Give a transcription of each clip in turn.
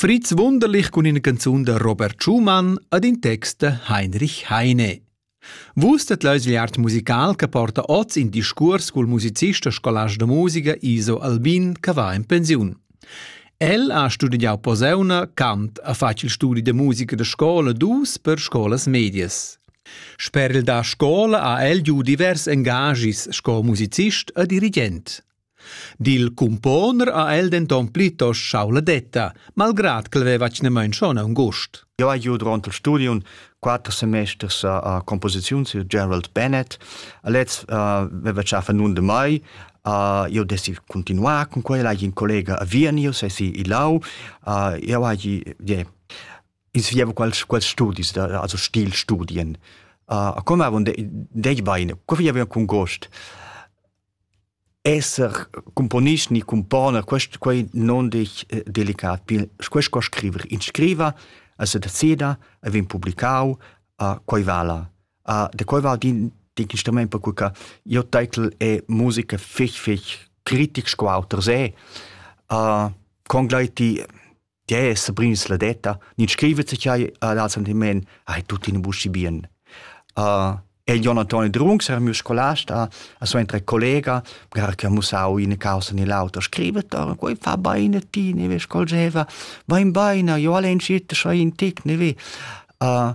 Fritz wunderlich cun ina canzun da Robert Schumann ed in text da Heinrich Heine. Vus det l'Ausliart musical che porta oz in discurs cul musicist e scolast da musica Iso Albin che va in pensiun. El ha studiau poseuna, cant, ha fatg il studi de musica da scola dus per scolas medias. Sper il da scola ha el giu divers engagis sco musicist e dirigent. Dil cumponer ha el denton plitost schau la detta, malgrad ch'el veva atgnamain schon aunc Jau hai giu durant il studium quatter semesters a composiziun sur Gerald Bennett. A lez uh, veva tschafa nun de mai. Uh, io desi continuar con quella, hai in collega a Viernio, se si i lau. Uh, io hai, yeah, insvieva quals, quals studis, also Stilstudien. Uh, a come avon de, dei baine, co vi aveva con gost? Esser cumponist ni cumponer, quest quai non desch delicat pil. Quest co scriver. In scriva, el se decida, el vegn publicau, quei vala. da quei val din d'in instrument, perque che jeu taitel è musica fich fich critic sco auter se. con gl'ei ti Tgè è Sabrins la detta? Nid scrivet se chai ad al sentiment, ai tutti in buschi bien. Uh, el Jonathan Drunks era mio scolast a, a sua entre collega, gara che ha musau in causa ni l'auto, scrivet, oh, quei fa baine ti, ne ve scolgeva, va in baina, io alle incite so in tic, ne ve. Uh,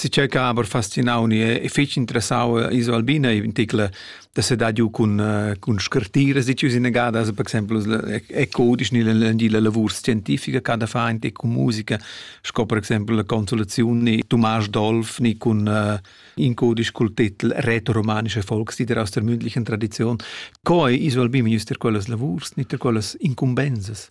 Tgi che ha aber fascinau ni è fetg interessau iso Albina ei in tickler da sedar giu cun cun scartiras ditg inagadas per exempel è codisch ni la lavur scientifica che da fa entec cun musica sco per exempel la consolaziun ni Tomás Dolf ni cun in codisch cul titel Retroromanische Volkslieder aus der mündlichen Tradition. Co ei iso Albina jus ter quellas lavurs ni ter quellas incumbensas?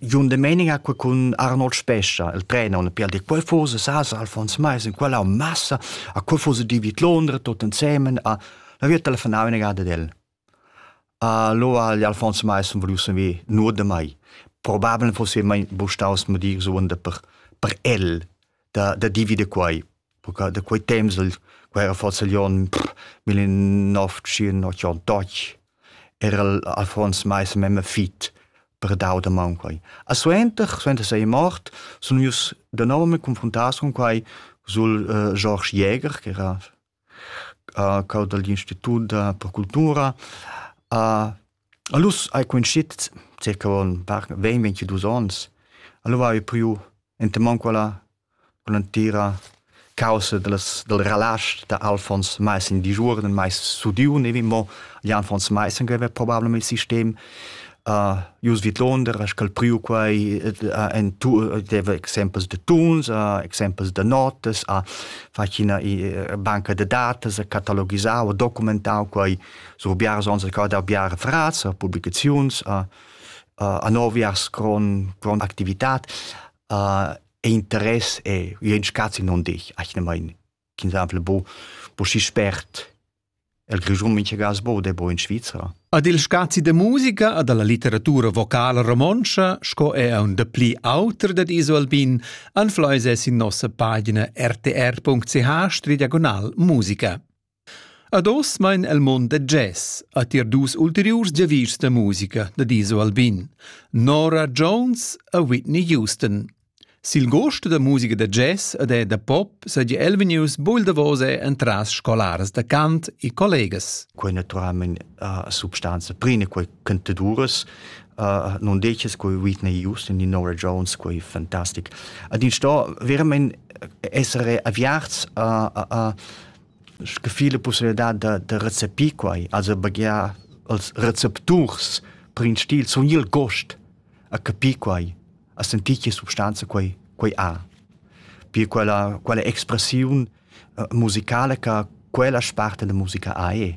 Jon Domenica cun Arnold Spescha, il prenon per dir quel fosa sasa Alfons Mais in quella massa a quel fosa di vid Londra tot ensemen a la via telefonava una gada del. Allora gli Alfons Mais han voluto saver nur da mai. Probabel fosse mai bustaus mo dir suonda per per el da da di vid quai. Perché da quei temps el, qua era forsa gli onn millennove-tschient-ottantac, era el affons meis memme fit per dau da man quei. E suenter, suenter sei mort, sun ius danovamaing confruntaus cun quai sul äh, George Jäger, che era äh, cau dagl Institut per cultura, a Allus hai cunscit circa ün par ventg-vintus ons. Alura haiu priu enta man quella cun l'entira caussa dallas dal relasch da Alfons Maissen digiuorden, meis sudiu nevin, mo gli Alfons Maissen che haveva probablem il sistem. Jus vidlonder ha sch'el priu quei en deva exempels da tuns, exempels da notas, ha fatg ina banca da datas, ha catalogisau, ha documentau quei. sur biars ons recordar biar frats a publicaziuns a, a, a noviars con, con activitat a, e interess e ien scazzi non dich achne mein kin exemple bo bo si spert el grischun minche gas bo de bo in Svizzera Ad il scazi de musica ad alla litteratura vocala romontscha, sco è un de pli auter dat iso albin, anfleise sin nossa pagina rtr.ch diagonal musica. Ad oz mein el mond da jazz, ha tier dus ulteriurs giavischs da musica da Diso Albin, Nora Jones e Whitney Houston. Sil gost da musica da jazz ed è da pop seigi Elvinius buil davos è entras scolaras da cant e collegas. Quei naturalment uh, substanza prima quei cantaduras uh, non decis quei Whitney Houston di Nora Jones quei fantastic. Ad in sto veramente essere avviarts uh, uh, uh, sche fila pussibilitad da, da recepir quai, also baghiar als recepturs per in stil, sun il gost a capir quai, a sentir che substanza quai, quai ha. Pir quella, quella expressiun uh, musicale che quella sparte della musica ha è.